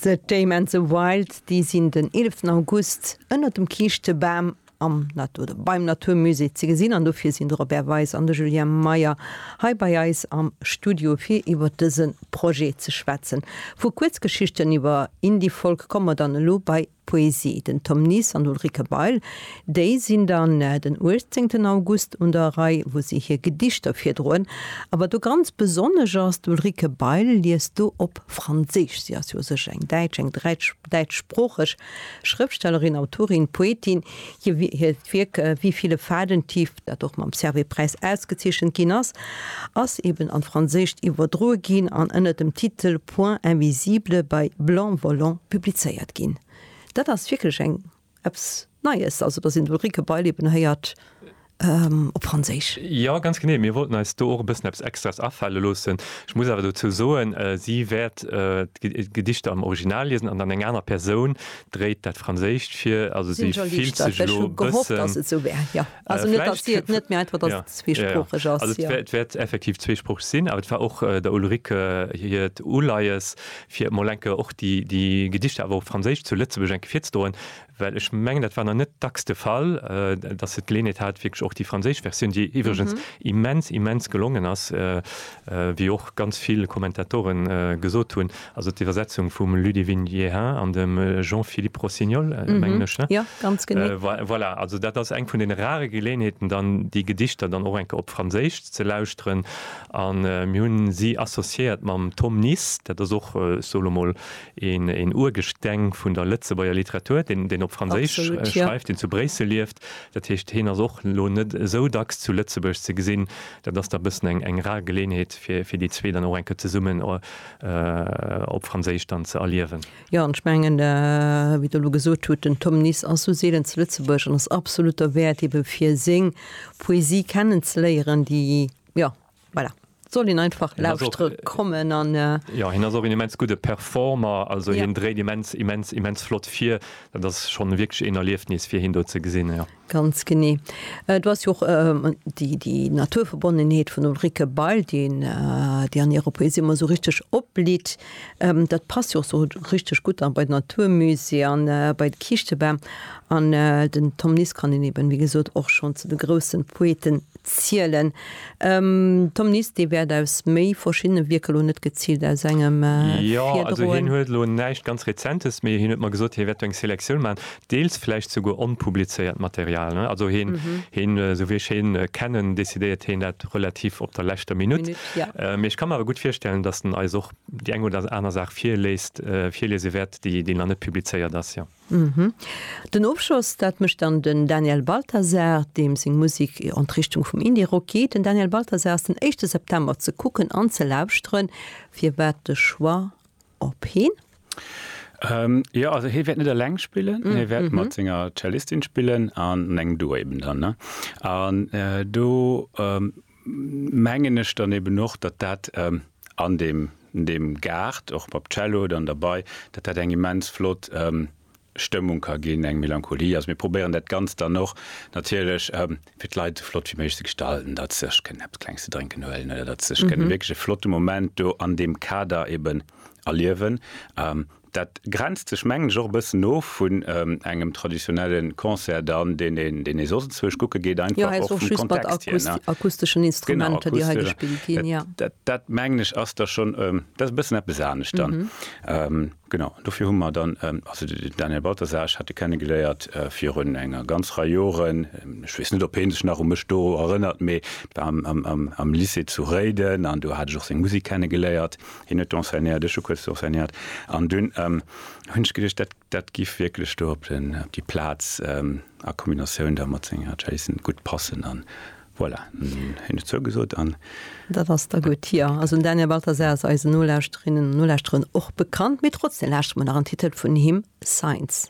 The Tame and the Wild, déi sinn den 11 August ënner dem Kiischtebam am Natur oder beim Naturmusée ze gesinn an dofir sinn de Robert Weis an de Julien Meyer hei bei eis am Studio fir iwwer dëse Projet ze schwätzen. Vu Kuerzgeschichten iwwer Indie-Folk komme mer dann elo bei Poesie, den Tom Nies an d'Ulrike Bail, déi sinn dann den 18 August un der Rei, wou si hir Gedichter virdroen. A wat do ganz besonnesch ass, d'Ulrike Bail liest do op Franséisch, si ass jo u sech eng Däitsch, eng däitschsproocheg Schrëftstellerin, Autorin, Poetin. Hiert Wierk Wie viele Faden tief, dat och mam Servais-Präis ausgezeechent ginn ass, ass eben an d'Franséischt iwwerdroe ginn an ënner dem Titel. Point Invisible bei Blanc Volant publizéiert ginn. Dat ass wierklech eng eppes Neies, also datt een d'Ulrike Beileben héiert op Franséisch. Jo, ganz genee. Mir wollten eis do och e bëssen eppes Extraes afale loossen. Ech muss awer dozou soen, si wäert d'Gedichter am Original liesen an dann eng aner Persoun dréit dat Franséischt vir. Also si fillt sech elo e bëssen. Also net, datt si et net, mä einfach, datt et zweesproocheg ass. Jo. Et wäert effektiv zweesproocheg sinn, awer et war och der Ulrike hiert Uleies, fir mol eng Kéier och déi Gedichter awer op Franséisch zu Lëtzebuerg eng Kéier virzedroen, well ech mengen, dat war nach net dacks de Fall, datt se d'Geleeënheet hat, wierklech och déi franséisch Versioun, déi iwwregens immens, immens gelongen ass, wéi och ganz vill Kommentatoren gesot hunn. Also d'Iwwersetzung vum Ludivine Jehan an dem Jean-Philippe Rossignol, mengen ech, ne? Jo, ganz genee. Voilà, also dat ass eng vun deene rare Geleeënheeten, dann déi Gedichter dann och eng Kéier op Franséisch ze lauschteren. A mir hunn si associéiert mam Tom Nis, dat ass och, ech soe lo mol, een Urgesteng vun der Lëtzebuerger Literatur, deen op Franséisch schreift, deen zu Bréissel lieft. Dat heescht, hien ass och lo net esou dacks zu Lëtzebuerg ze gesinn. Dat ass da e bëssen eng rar Geleeënheet, fir déi zwee dann och eng Kéier zesummen op Franséisch dann ze erliewen. Jo, an ech mengen, wéi Der elo gesot hutt, den Tom Nis ass esou seelen zu Lëtzebuerg an ass absolut derwäert, ebe fir seng Poesie kennen ze léieren, déi, jo, voilà, soll een einfach lauschtere kommen an. Jo, hien ass och een immens gudde Performer, also hien dréit immens, immens, immens flott vir. Dat ass schonn wierklech een Erliefnis, fir hien do ze gesinn, jo. Ganz genee. Et ass jo och déi Naturverbonnenheet vun Ulrike Bail, déi an hirer Poesie ëmmer esou richteg opblitt. Dat passt jo och esou richteg gutt bei d'Naturmusée an bei de Kiischtebam. An den Tom Nies kann een eben, wéi gesot, och schonn zu de grousse Poeten zielen. Tom Nies, Dir wäert aus méi verschiddene Wierker elo net geziilt aus engem virdroen? Jo, also hien huet elo näischt ganz Rezentes, mee hien huet mer gesot, hie wäert do eng Selektioun maachen. deels vläicht souguer onpublizéiert Material, ne, also hien, hien, esou wéi ech hien kennen, décidéiert hien dat relativ op der leschter Minutt. Minutt, ja. Mee ech ka mer awer gutt virstellen, datt en eis och déi eng oder aner Saach virléist, virliese wäert, déi, déi nach net publizéiert ass, jo. Den Ofschloss, dat mécht dann den Daniel Balthasar, deem seng Musek an d'Richtung vum Indie-Rock geet. Den Daniel Balthasar ass den éischte September ze kucken an ze lauschteren. Firwat de Choix op heen? Jo, also hie wäert net eleng spillen, hie wäert mat senger Cellistin spillen an an engem Duo eben dann. Ne? An do mengen ech dann eben och, datt dat an deem Gaart, och mam Cello dann derbei, datt dat eng immens flott Stëmmung ka ginn, eng Melancholie. Also mir probéieren dat Ganzt dann och natierlech fir d'Leit esou flott wéi méiglech ze gestalten, datt se sech kënnen eppes Klenges ze drénken huelen oder datt se sech kënnen wierklech e flotte Moment do an deem Kader eben erliewen. Dat grenzt sech mengen ech och e bëssen of vun engem traditionelle Concert dann, deen ee, deen ee soss enzwousch kucke geet, Jo, einfach hei ass och och vum just mat Kontext hier, ne? akusteschen Genau, Instrumenter, déi hei akustesch. gespillt ginn, jo. Dat, dat mengen ech ass da schonn, dat ass e bëssen eppes anescht dann. Genau, an dofir hu mer dann, also den Daniel Balthasar, ech hat e kennegeléiert virun enger ganz Rei Joren, ech weess net, ob hee sech nach u mech do erënnert, mee et war am Lycée zu Réiden an do hat ech och seng Musek kennegeléiert. Hien huet do enseignéiert, ech hu kuerz do enseignéiert an dunn hunn ech geduecht, dat dat giff wierklech do op déi Plaz a Kombinatioun da mat senger Jazzzen gutt passen an Voilà, hunn ech zougesot an. Dat ass da gutt. Jo, also den Daniel Balthasar ass eisen Nolauschterinnen an Nolauschteren och bekannt, mee trotzdem lauschteren mer nach en Titel vun him, Signs.